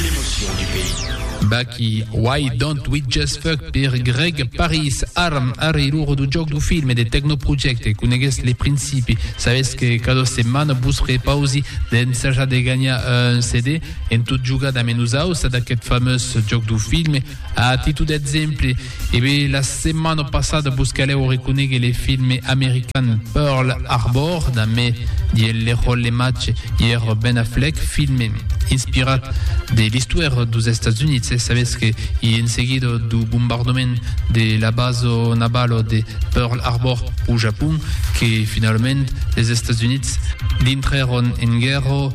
L'emotion du pays. Baky, Why Don't We Just Fuck per Greg Paris, Arm, Arri lor du jòc du film e de Techno Project, coneguètz le principi, sabètz que cada setmana vos repausi d'ensajar de ganhar un CD en tot jogar damb nosaus ad aqueth fameus jòc du film, a títol d'exemple, E be, la setmana passada vos calèu reconéguer le filme american Pearl Harbor, damé diel le ròl le matge ièr Ben Affleck, filme inspirat de l'istòira dos Estats Units, e sabetz que i en seguida do bombardament de la basa navalo de Pearl Harbor au Japon que finalament les Estats Units dintrèron en guèrra,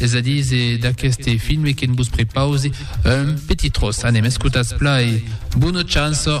Es a dir, se d'aqueste filme que'n vos prepause un petit tros. Anem, escotatz pla e bona chança!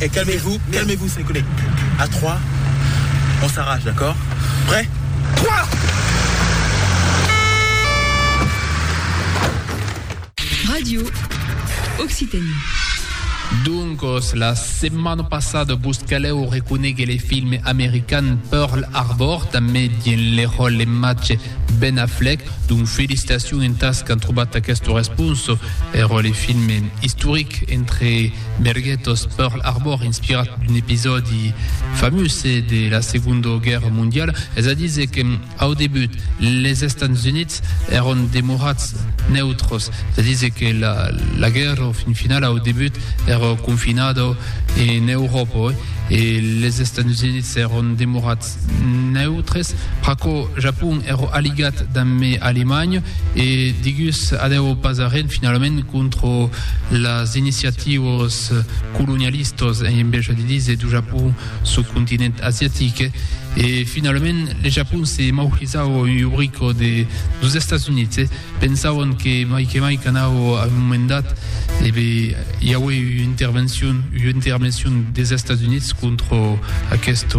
Eh calmez-vous, calmez-vous mes collègues. À trois, on s'arrache, d'accord? Prêts? Trois! Radio Occitanie. Doncos, la setmana passada vos calèu reconéguer le film american Pearl Harbor, tanben dien le ròl le matge Ben Affleck, donc felicitacion entas qu'an trobat aquesta responsa, ero le film historic entre Merguèt os Pearl Harbor inspirat d'un episòdi famós de la Segonda Guèrra Mondiala, es a díser que au debut les Estats Units èron demorats neutres, es a díser que la guèrra au fin final au debut èra confinada en Euròpa e les Estats Units èron demorats. Neutres, pr'aquò Japon ero aligat damb me Alemanha e digus adèu pas arren finalament contra las iniciatiuas colonialistas en embeja de díser du Japon çò continent asiatic e finalament le Japon se maurizava un iubrico de dus Estats Units e pensavan que mai que mai qu'anava a un moment dat e be i aué ua intervencion ua intervencion des Estats Units contra aquesta